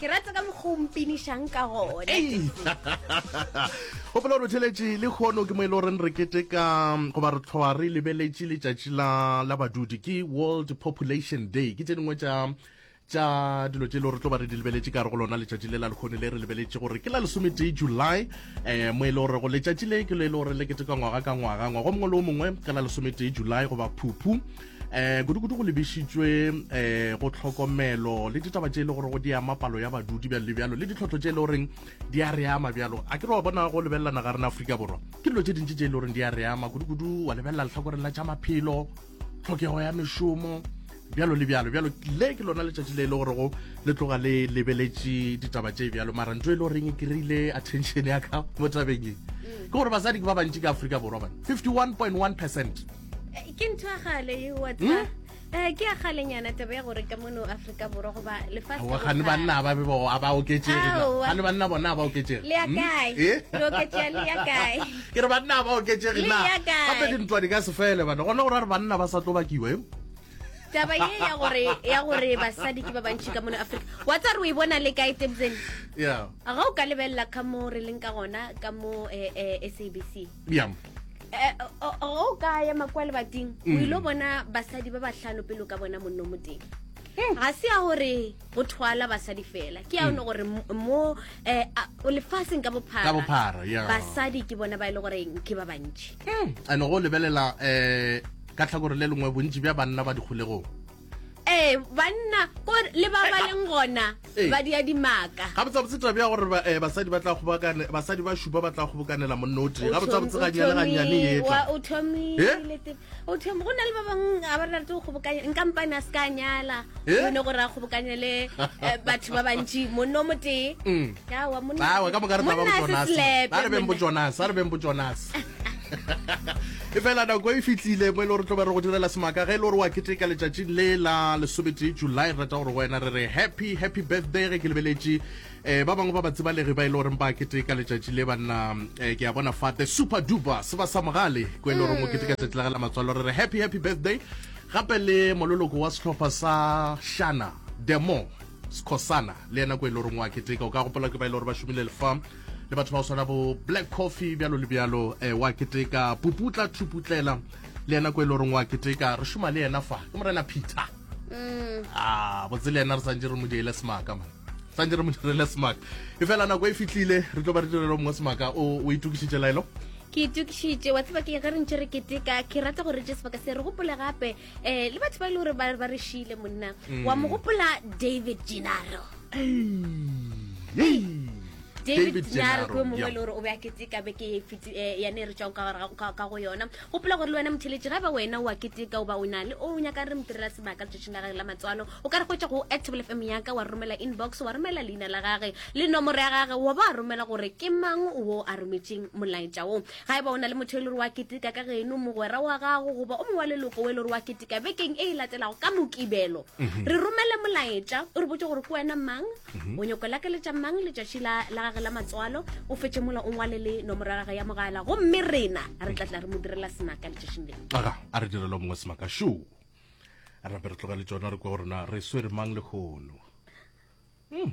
ke rata ka mokgwa o mpinišang ka gona gopola gore theletše le kgono ke mo e le goreng re keteka goba re tlhoa re lebeletše letšatši la la badudi ke world population day ke tše dingwe tša tša dilo tše e le gore tlo ba re di lebeletše ka re go lona letšatši le la lekgone le re lebeletše gore ke la lesometee july um mo e le gore go letšatši le ke lo e le gore le ketekwa ngwaga ka ngwaga ngwaga mongwe le o mongwe ka la lesometee july goba phuphu eh kudu-kudu go lebišitšwe eh go tlhokomelo le ditaba tše e le gore go di ama palo ya badudi bjalo le bjalo le ditlhotlho tše e le goreng di a re ama bjalo a ke re wa bona go lebelelana ga rena aforika borwa ke dilo tše dintši tše e le goreng di a re ama kudu-kudu wa lebelela letlhakoreng la tša maphelo tlhokego ya mešomo bjalo le bjalo bjalo le ke lona letšatši le e le gorego le tloga le lebeletše ditaba tše bjalo mara ntho e le goreng e kry-ile attention ya ka mo tabeng e ke gore basadi ke ba bantši ka aforika borwa bana 51.1 percent eh, ke ntho ya gale e wa tsa hmm? eh, ke ya galenyana taba ya gore ka mono aforika borwa goba lefatshegane banna ba bebo a ba oketsegegane banna bona a ba oketsege le ya hmm? kae eh? oketsega le ya kae ke re banna a ba oketsege na gape dintwa di ka se fele bana gona gore re banna ba sa tlo bakiwa e taba ye ya gore ya gore basadi ke ba bantši ka mone africa wa tsa re o e bona le kae tebzene ga o ka lebelela ka mo re leng ka gona ka mo eh, eh, sabc bjang eh, o ka ya makwa lebating o mm. ile bona basadi ba bahlano pele o ka bona monno mo teng hmm. ga se ya gore go thwala basadi fela ke ya one hmm. gore mo eh, lefatsheng ka bophara basadi ke bona ba e le goreng ke ba bantši hmm. ane go lebelela um ka tlhakore le lengwe bontši bja banna ba dikgolegong ee banna ko le ba ba leng gona Ee. ba dia dimaka ga botsabotse tabe ya gore ba- eh, basadi ba tla kgobokane basadi ba šupa ba tla kgobokanela monna o tee ga botsabotse ga nyane ga nyane e etla o thomile Eh? te- o thom- go na le ba bangwe ga ba rate go kgobokanya nkampane a se ka a nyala Eh? one gore a kgobokanye le eh, batho ba bantši monno o motee Mm. awa monna- awa ka moka re taba monna a se bojonase slepe, a re beng monna. bojonase a re beng bojonase e fela nako e fitlile mo e le gore tlo be re go direla semaka ge e le gore wa keteka letšatši le la lesometee july re rata gore go wena re re happy happy birthday ge ke lebeletše um ba bangwe ba batsibalegi ba e le goreng ba keteka letšatši le banna um ke a bona fa the super duper se ba sa mogale ko e le goreng o keteka tšatši la ge la matswalo re re happy happy birthday gape le mololoko wa sehlopha sa shana demo sekhosana le yena ko e le goreng wa keteka o ka gopola ke ba e le gore ba šomile lefam le batho ba go swana bo black coffee bjalo le bjalo um wa keteka puputla thuputlela le yena ko e le goreng wa keteka re šoma le yena fa ke morena peter mm. a ah, botse le yena re santse re mo diele semaka man santse re mo direle semaka e fela nako e fitlhile re tlo ba re direlo mongwe semaka o itukišitše laelo ke itukišitše wa tseba ke ge re ntse re keteka ke rata gore re je sebaka se re gopole gape eh le batho ba ile gore ba ba re shile monna wa mo gopola david genaro david genaro ke mongwe le gore o be a keteka beke e fiti- eh, ya ne re tswang ka gare ga- ka- ka go yona gopola gore le wena motheletši ga ba wena wa keteka o ba o na le o nyaka re mo direla sebaka letšatšing la gage la matswalo o ka re goetša go actable fm yaka wa romela inbox wa romela leina la gage le nomoro ya gage wa ba romela gore ke mang wo a rometseng molaetša wo Ga eba o na le motho yo e le gore wa keteka ka geno, mogwera wa gago goba o mongwe wa leloko o e le gore wa keteka bekeng e e latelago ka Mokibelo, mhm. re romele molaetša o re botse gore ke wena mang, mhm. o nyoko lakeletša mang letšatši la gage la matswalo, o fetše mola o ngwale le nomoro ya gage ya mogala gomme rena re tla tla re mo direla semaka letšatšing leo. Aga, a re direlo mongwe semaka shu rape re tlogele tsona re kwa gore na re swere mang lehono hmm.